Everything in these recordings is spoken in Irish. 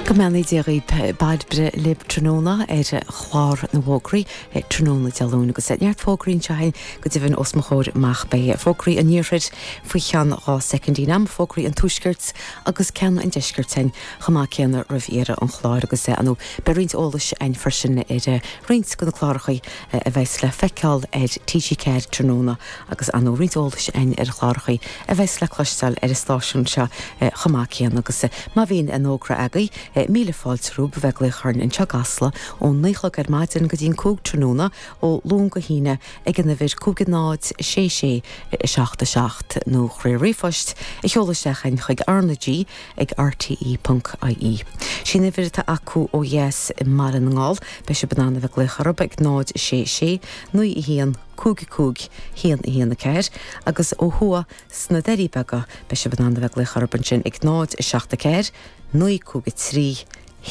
Go mbeannaí Dia dhaoib. Pádraic libh tráthnóna ar chlár na bhfógraí. Tráthnóna Dé Luain agus neart fógraí anseo againn go deimhin os mo chomhair amach beidh fógraí an Iarthair faoi cheann dhá soicind in am, fógraí an Tuaiscirt agus ceann an Deiscirt againn chomh maith céanna roimh dheireadh an chláir agus ar ndóigh beidh roinnt eolais againn freisin ar roinnt de na cláracha a bheas le feiceáil ar TG4 tráthnóna agus ar ndóigh roinnt eolais a'inn ar chlárachaí a bheas le cloisteáil ar an stáisiún seo chomh maith céanna agus má bhíonn aon fhógra agaí, míle fáilte romhaibh a bheith ag glaoch orainn anseo i gCasla ón naoi chlog ar maidin go dtí an cúig tráthnóna ó Luan go hAoine ag an uimhir 50667 7 nó ríomhphost a sheoladh isteach a'inn chuig R-na-G ag rte.ie. Sí'n uimhir atá acu ó dheas i mBaile na nGall. Beidh sib in ann a bheith glaoch orrab ag 0 6 6 9 1 cúig, a cúig, haon, a haon, a ceathair, agus ó thuaidh sna Doirí Beaga, beidh sibh in ann a bheith ag glaoch orthu ansin ag 0, a seacht, a ceathair, naoi, cúig, a trí,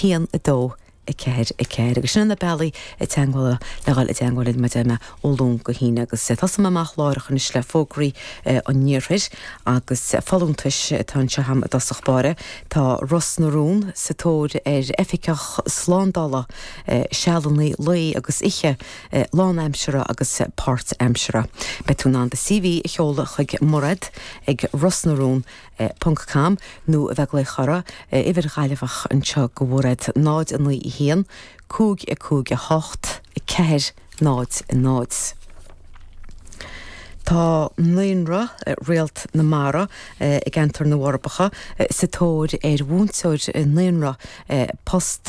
haon, a dó, a ceathair, a ceathair, agus sin na bealaí teagmhála le dhul i dteagmháil linn mar a deir mé ó Luan go hAoine agus tosóidh mé amach láithreach anois le fógraí an iarthair agus folúntais atá anseo a'm i dtosach báire, tá Ros na Rún sa tóir ar oifigeach slándála sealanna lae agus oíche. lánaimseartha agus páirtaimseartha. Beidh tú in ann do CV a sheoladh chuig Mairéad ag rosnarun ponc com nó a bheith ag glaoch orra, uimhir Ghaillimheach anseo go Mhairéad, 09 1 55 8 4 0 0. Tá naíonra Réalt na Mara i gCeantar na bhForbacha sa tóir ar mhúinteoir naíonra, post.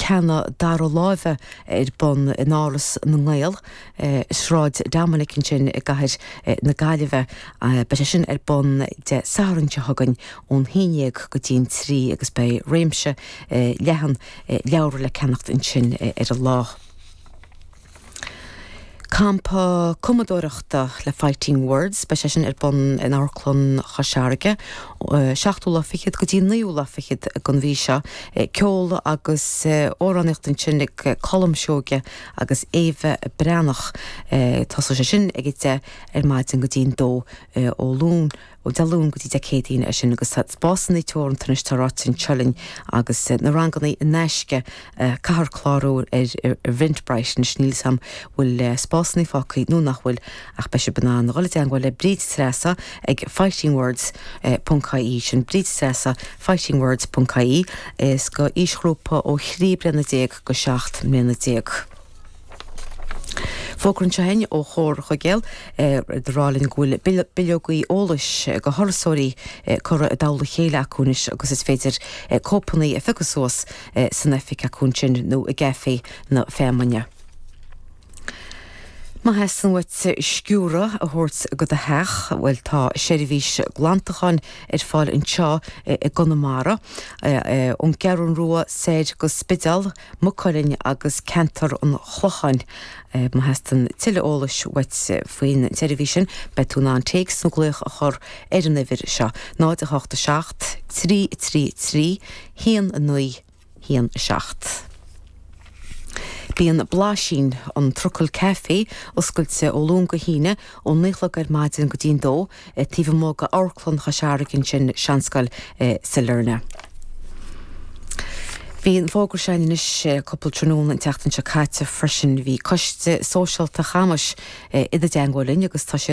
ceanna dara láimhe ar bun in Áras na nGael i Sráid Dominic ansin i gcathair na Gaillimhe. Beidh sé sin ar bun Dé Sathairn seo chugainn ón haon dhéag go dtí an trí agus beidh réimse leathan leabhar le ceannacht ansin ar an lá. Campa cumadóireachta le Fighting Words, beidh sé sin ar bun in Amharclann Chois Fharraige, 7ú lá fichead go dtí an 9ú lá fichead den mhí seo. Ceol agus amhránaíocht ansin ag Colm Seoige agus Éabha Breathnach. Tosóidh sé sin ag a deich ar maidin go dtí an dó ó Luan. Ó Dé Luain go dtí Dé Céadaoin, é sin agus tá spásanna teoranta anois, tá ráite anseo liom agus na ranganna in aisce, caithfear clárú ar Eventbrite anois, níl 'fhios a'm bhfuil spásanna fágtha nó nach bhfuil ach beidh sibh in ann dhul i dteangmháil le Bríd Treasa ag fightingwords. ie, sin Bríd Treasa, fightingwords. ie, is don aoisghrúpa ó thrí bliana déag go seacht mbliana déag. Fógra anseo againn ó Chomhar Chuigéal ag rá linn go bhfuil bileogaí eolais do thurasóirí curtha i dtoll a chéile acu anois agus is féidir cóipeanna a phiocadh suas san oifig acu ansin nó i gcaife na feamainne. Má theastaíonn uait sciúradh a thabhairt go do theach, bhuel tá seirbhís glantacháin ar fáil anseo i gConamara, ón gCeathrú Rua soir go Spidéal. Maigh Cuilinn agus ceantar an Chlocháin. Má theastaíonn tuilleadh eolais uait faoin tseirbhís sin, beidh tú in ann téacs nó glaoch a chur ar an uimhir seo, 087 333 1917. Bíonn Blaisín, an trucail caife, oscailte ó Luan go hAoine, ó naoi a chlog ar maidin go dtí'n dó, taobh amuigh d'Amharclann Chois Fharraige ansin, Seanscoil Sailearna. Bhí an fógra sin anois cúpla tráthnóna an tseachtain seo caite freisin. Bhí coiste sóisialta Chamais i dteagmháil linn agus tá siad.